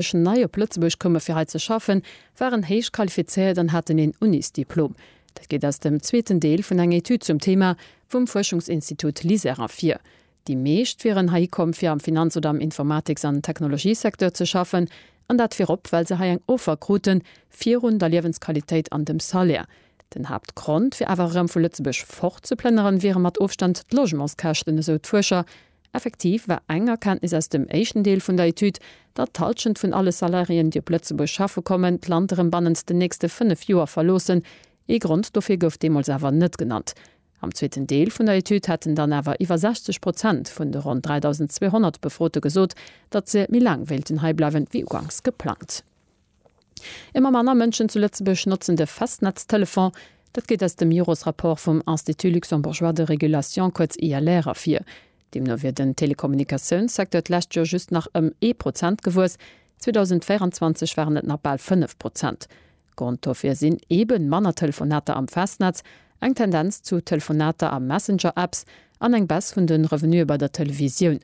Mënschen nei op Lëtzebuerg koume fir hei ze schaffen, waren héich qualifizéiert an haten een Unisdiplom. Dat geet aus dem zweeten Deel vun enger Etüd zum Thema vum Fuerschungsinstitut LISER ervir. Déi meescht wieren hei komm fir am Finanz oder am Informatiks an Technologiesecteur ze schaffen an dat virop well se hei eng Offer kruten virun der Liewensqualitéit an dem Salaire. Den Haaptgrond fir awer erëm vu Lëtzebuerg fort ze plënneren wiere mat Ofstand d'Logementskäschten, esou d'Fuerscher Effektiv war eng Erkenntnis aus dem éischten Deel vun der Etüd, datt d'Hallschent vun alle Salariéen, déi op Lëtzebuerg schaffe kommen, d'Land erëm bannent den nächste fënnef Joer verloossen. Ee Grond dofir gouf deemools awer net genannt. Am zweeten Deel vun der Etüd hätten dann awer iwwer 60 Prozent vun de ronn 3.200 Befrote gesot, datt se méi laang wéilten heibleiwen, wéi uganks geplangt. Ëmmer manner Mënschen zu Lëtzebuerg notzen de Festnetztelefon. Dat geet aus dem Jores-Rapport vum Institut luxembourgeois de régulation, kuerz ILR, ervir. Deemno wier den Telekommunikatiounssecteur d'lescht Joer just nach ëm ee Prozent gewuess. 2024 waren et nach bal fënnef Prozent. Grond dofir sinn eeben manner Telefonater am Festnetz, eng Tendenz zu Telefonater a Messenger-Apps an eng Baisse vun de Revenuë bei der Televisioun.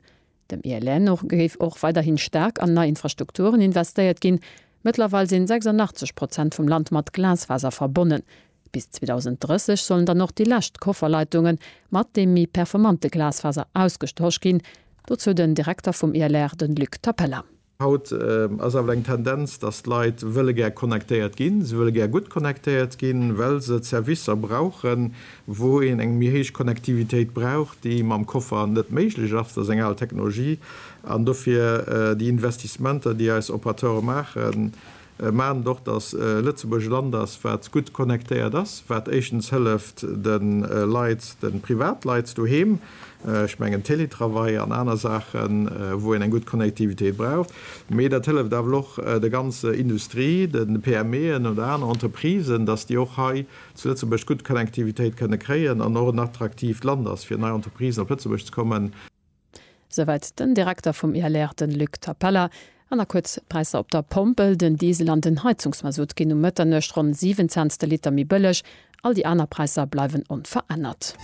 Dem ILR no géif och weiderhin staark an nei Infrastrukturen investéiert ginn. Mëttlerweil sinn 86 Prozent vum Land mat Glasfaser verbonnen. Bis 2030 sollen dann och déi lescht Kofferleitungen mat deem méi performante Glasfaser ausgestosch ginn. Dozou den Direkter vum ILR, den Luc Tapella. Haut ass awer eng Tendenz, dass d'Leit wëlle gär connectéiert ginn. Si wëlle gär gutt connectéiert ginn, well se d'Servicer brauchen, wou een eng méi héich Connectivitéit brauch, déi mam Koffer net méiglech ass. Dat ass eng al Technologie. An dofir déi Investissementer, déi eis Operateure maachen, Maachen et och, datt Lëtzebuerg e Land ass, wat gutt connectéiert ass, wat éischtens hëlleft de Leit, de Privatleit doheem, ech mengen Télétravail an aner Saachen, wou een eng gutt Connectivitéit braucht, mee dat hëlleft awer och der ganzer Industrie, de PMEen oder aner Entreprisen, datt déi och hei zu Lëtzebuerg gutt Connectivitéit kënne kréien an och en attraktiivt Land ass, fir nei Entreprisen op Lëtzebuerg ze kommen. Souwäit den Direkter vum ILR, de Luc Tapella. An da kuerz d'Präisser op der Pompel, Den Diesel an den Heizungsmasutt ginn um Mëtternuecht ronn 7 Cents de Liter méi bëlleg. All déi aner Präisser bleiwen onverännert.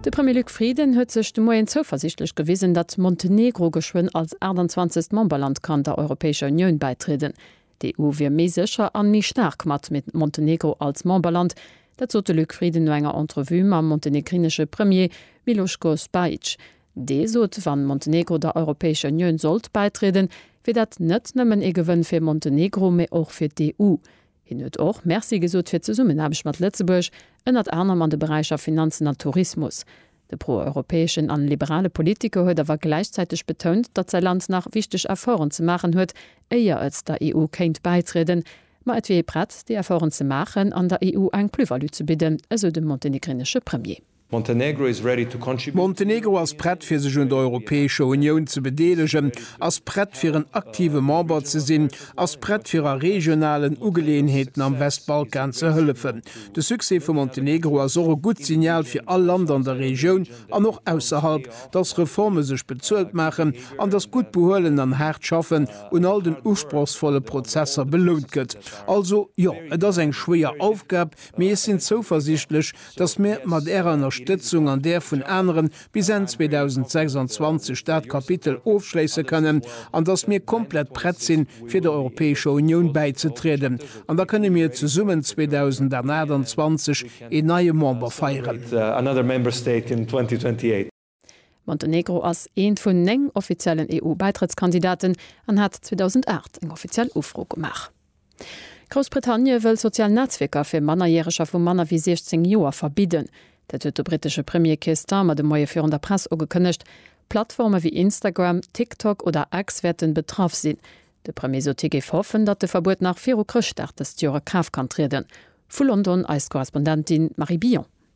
De Premier Luc Frieden huet sech de Moien zouversiichtlech gewisen, datt Montenegro geschwënn als 28. Memberland kann der Europäescher Unioun bäitrieden. D'EU wier méi sécher an méi staark mat Montenegro als Memberland. Dat sot de Luc Frieden no enger Entrevue mam montenegrinesche Premier Miloško Spajić. Dee sot, wann Montenegro der Europäescher Unioun sollt bäitrieden, wier dat net nëmmen ee Gewënn fir Montenegro, mee och fir d'EU. Hien huet och Merci gesot fir d'Zesummenaarbecht mat Lëtzebuerg, ënnert anerem an de Beräicher Finanzen a Tourismus. De pro-europäeschen an liberale Politiker huet awer gläichzäiteg betount, datt säi Land nach wichteg Efforten ze maachen huet, éier et der EU kéint bäitrieden, ma et wier ee prett, déi Efforten ze maachen an der EU eng Plus-value ze bidden, esou de montenegrinesche Premier. Montenegro ass prett fir sech un der Europäescher Unioun ze bedeelegen, ass prett fir en aktive Member ze sinn, ass prett fir a regionalen Ugeleeënheeten am Westbalkan ze hëllefen, De Succès vu Montenegro ass och e gutt Signal fir all Land an der Regioun an och ausserhalb, dass Reforme sech bezuelt maachen an dass gutt Behuelen an haart Schaffen un all den usprochsvolle Prozesser belount gëtt. Also, jo, et ass eng schwéier Aufgab, mee ech sinn zouversichtlech, dass mir mat Ärer Ënnerstëtzung an där vun aneren bis Enn 2026 dat Kapitel ofschléisse kënnen an datt mir komplett prett sinn, fir der Europäescher Unioun bäizetrieden. An da kënne mir zesummen 2028 een neie Member feieren. Montenegro ass eent vun néng offiziellen EU-Bäitrëttskandidaten an hat 2008 eng offiziell Ufro gemaach. Groussbritannie wëll sozial Netzwierker fir Mannerjäreger vu manner wéi 16 Joer verbidden. Dat huet de brittesche Premier Keir Starmer de Moie virun der Press ugekënnegt. Plattforme wéi Instagram, TikTok oder X wäerten betraff sinn. De Premier sot hie géif hoffen, datt de Verbuet nach viru Chrëschtdag dëst Joer a Kraaft kann trieden. Vu London eis Korrespondentin Marie Billon.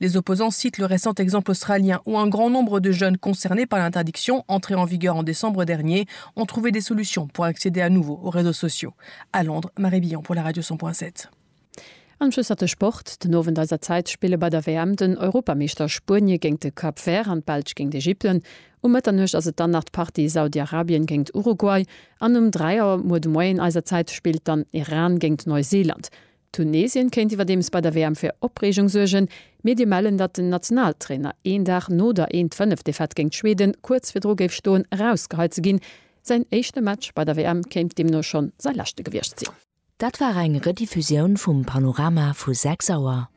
Les opposants citent le récent exemple australien où un grand nombre de jeunes concernés par l'interdiction, entrée en vigueur en décembre dernier, ont trouvé des solutions pour accéder à nouveau aux réseaux sociaux. À Londres, Marie Billon pour la Radio 100.7. Am Schluss hat de Sport. Den Owend eiser Zäit spille bei der WM den Europameeschter Spuenie géint de Cap Vert an d'Belsch géint Ägypten. Um Mëtternuecht ass et dann nach d'Partie Saudi-Arabien géint Uruguay an um 3 Auer muer de Moien eiser Zäit spillt dann Iran géint Neuseeland. Tunesien kéint iwwerdeems bei der WM fir Opreegung suergen. Medie mellen, datt den Nationaltrainer een Dag no der 'Eent Fënnef'- Defaite géint Schweden kuerz virdru géif stoen, erausgeheit ze ginn. Säin éischte Match bei der WM kéint deemno schonn säi leschte gewiescht sinn. Dat war eng Rediffusioun vum Panorama vu 6 Auer.